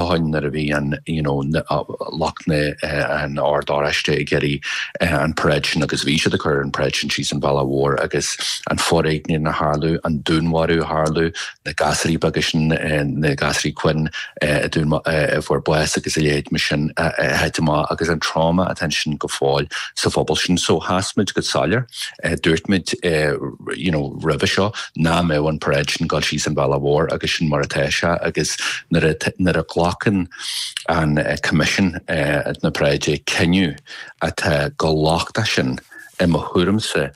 Nuair a bhí an, you know, lucht na, an Ord Oráiste ag iarraidh an paráid agus bhí siad ag cur an paráid síos an bhealach mhór agus an foréigean a tharla, an dúnmharú a tharla, na gasúraí beaga sin, na gasúraí Quinn a dún, a fuair bás agus a leithéid sin a thit amach agus an trauma atá ansin go fóill sa phobal sin. So, sheas muid go soiléir, dúirt muid, you know, roimhe seo, ná mbeadh an paráid sin dul síos an bhealach mhór agus sin mar atá sé agus nuair a ghlacann Coimisiún na paráide cinneadh atá chomh lochtach sin i mo thuairimse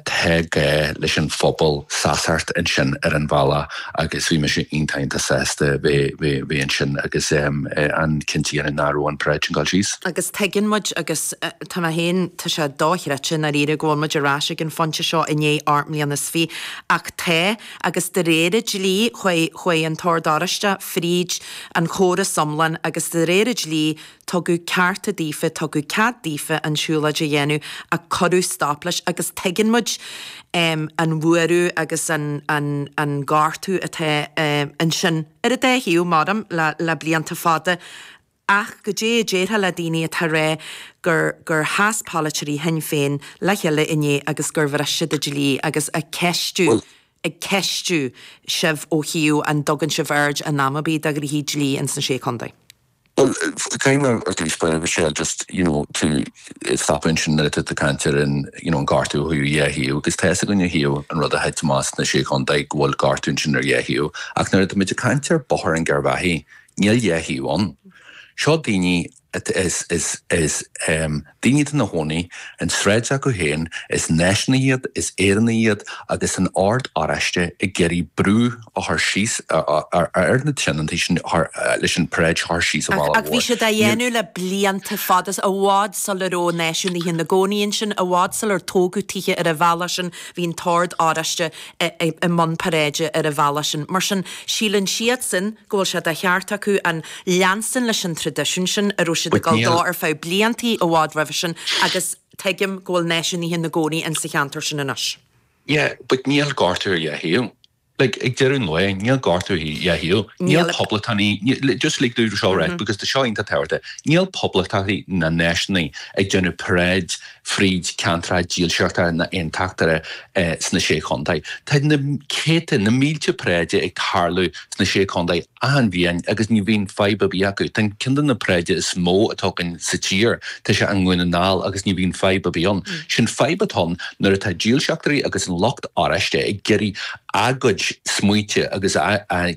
tá gá leis an phobal seasamh ansin ar an bhealach agus bhí mise iontach sásta bheith ansin agus ag cinntiú nach raibh an paráid sin dul síos. Agus tuigeann muid agus. Tá mé féin, tá sé dochreidte ndáiríre go bhfuil muid ar ais ag an phointe seo i ndiaidh ocht mbliana is fiche, ach tá, agus de réir an dlí, chuaigh an tOrd Oráiste fríd an chóras iomlán agus de réir an dlí tugadh cearta daofa, tugadh cead daofa an tsiúlóid a dhéanamh ach cuireadh stop leis agus tuigeann muid an bhuaireamh agus an gortú atá ansin ar an dá thaobh, mar a deirim, le blianta fada. Ach goidé a déarfá le daoine atá ag rá gur gur sheas polaiteoirí Shinn Féin le chéile inné agus gur bhris siad an dlí agus ag ceistiú ag ceistiú sibh ó thaobh an dtugann sibh aird in am ar bith do ghnoithí dlí ins na Sé Chontae? Bhuel, caithfidh mé ar dtús just, you know, tú a stopadh ansin nuair atá tú ag caint ar an, you know, an gortú ó thaobh dhá thaobh agus tá fhios againn ó thaobh an rud a thit amach sna Sé Chontae go bhfuil gortú ansin ar dhá thaobh ach nuair atáimid ag caint ar Bóthar an Gharbhachaidh, Níl dhá thaobh ann. Seo daoine, is, is, is, em, daoine atá ina gcónaí, an tsráid acu féin, is náisiúnaithe iad, is Éireannaigh iad, agus an Ord Oráiste ag iarraidh brú a chur síos ar na tionóntaí sin leis an paráid a chur síos an bhealach mhór. Ach bhí siad á dhéanamh le blianta fada, i bhfad sula raibh náisiúnaithe ina gcónaí ansin, i bhfad sular tógadh tithe ar an bhealach sin, bhí an tOrd Oráiste i mbun paráide ar an bhealach sin. Mar sin, síleann siadsan, go bhfuil sé de cheart acu leanstan leis an traidisiún sin a raibh siad ag dul dó ar feadh bliantaí i bhfad roimhe sin agus tuigim go bhfuil náisiúnaithe ina gcónaí in sa cheantar sin anois. Yeah, but níl gortú ar dhá thaobh. Like, ag deireadh an lae, níl gortú ar dhá thaobh. Níl poblachtánaigh, just like tá seo, right, because tá seo iontach tábhachtach, níl poblachtánaigh ná náisiúnaigh ag déanamh paráid fríd ceantracha dílseachta na n-aontachtaithe sna Sé Chontae. Tá na céadta, na mílte paráidí ag tarlú sna Sé Chontae, achan bhliain, agus ní bhíonn fadhb ar bith acu. Tá ceann de na paráidí is mó atá againn sa tír, tá sé i nDún na nGall, agus ní bhíonn fadhb ar bith ann. Sin fadhb atá ann nuair atá dílseachtairí agus an lucht oráiste ag iarraidh a gcuid smaointe agus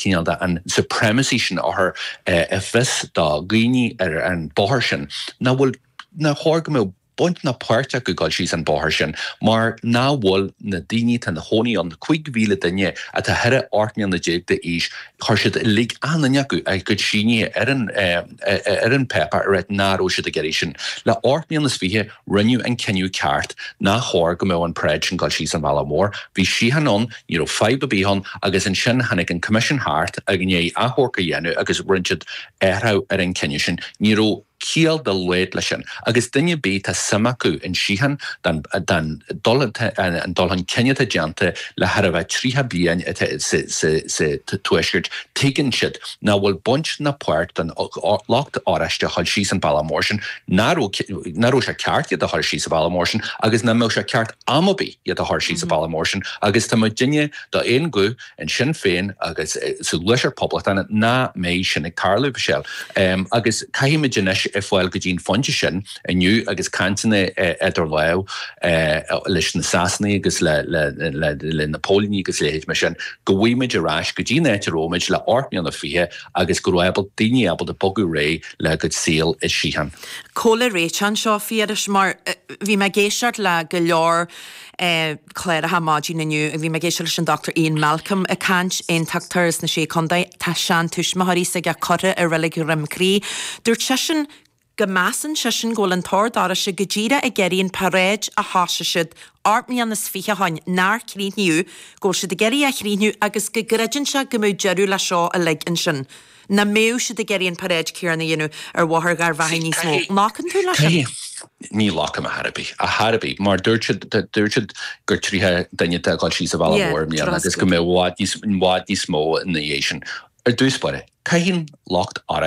cineál an supremacy sin a chur i bhfios do dhaoine ar an bóthar sin, nach bhfuil. Nár chóir go mbeadh baint ná páirt acu dul síos an bóthar sin, mar ná fuil na daoine atá ina chónaí ann, 5,000 duine atá thar 18 mbliana d'aois, chuir siad uilig, achan duine acu, a gcuid sínithe ar an, ar an bpáipéar a ráit ná raibh siad ag iarraidh sin. Le ocht mbliana is fiche, rinneadh an cinneadh ceart, nár chóir go mbeadh an paráid sin dul síos an bealach mór. Bhí síocháin ann, ní raibh fadhb ar bith ann, agus ansin tháinig an Coimisiún thart i ndiaidh achomharc a dhéanamh agus rinne siad athrach ar an cinneadh sin. Ní raibh. ciall dá laghad leis sin, agus duine ar bith tá suim acu in síocháin dan, dan, dul an, an dul chun cinn atá déanta le chóir a bheith tríocha bliain atá sa, sa, sa Tuaisceart, tuigeann siad ná fuil baint ná páirt don lucht oráiste a dhul síos an bealach mór sin, ná raibh, ná raibh sé ceart iad a dhul síos an bealach mór sin agus ná mbeadh sé ceart am ar bith iad a dhul síos an bealach mór sin agus tá muidinne d'aon ghuth In Sinn Féin agus sa Gluaiseacht Poblachtánach ná mbeidh sin ag tarlú, Michelle. Agus caithfimid anois fáil go dtí an phointe sin, inniu agus cainteanna idir lámh leis na Sasanaigh agus le na póilíní agus a leithéid mar sin, go bhfaighimid ar ais go dtí an áit a raibh muid le hocht mbliana fiche agus go raibh daoine ábalta bogadh ar aghaidh le a gcuid saol i síocháin. Cá bhfuil an réiteach anseo, Phiarais, mar bhí mé ag éisteacht le go leor Cláracha maidin inniu agus bhí mé ag éisteacht leis an Dr Ian Malcolm ag caint, aontachtóir as na Sé Chontae. Tá seantuismitheoirí s'aige curtha i Reilig Dhroim Crí. Dúirt seisean go measann seisean go bhfuil an tOrd Oráisteach go díreach ag iarraidh an paráid a thoisigh siad ocht mbliana is fiche ó shin nár críochnaíodh, go bhfuil siad ag iarraidh é a chríochnú agus go gcreideann sé go mbeidh deireadh le seo uilig ansin. Ná mbeadh siad ag iarraidh an paráid céarna a dhéanamh ar Bhóthar Gharbhachaidh níos mó? Glacann tú leis sin? Ní ghlacaim ar chor ar bith. Ar chor ar bith, mar dúirt siad, dúirt siad gur tríocha duine atá ag dul síos an bhealach mhór i mbliana agus go mbeidh i bhfad níos mó ina dhiaidh sin. Ar dtús báire, caitheann lucht oráiste.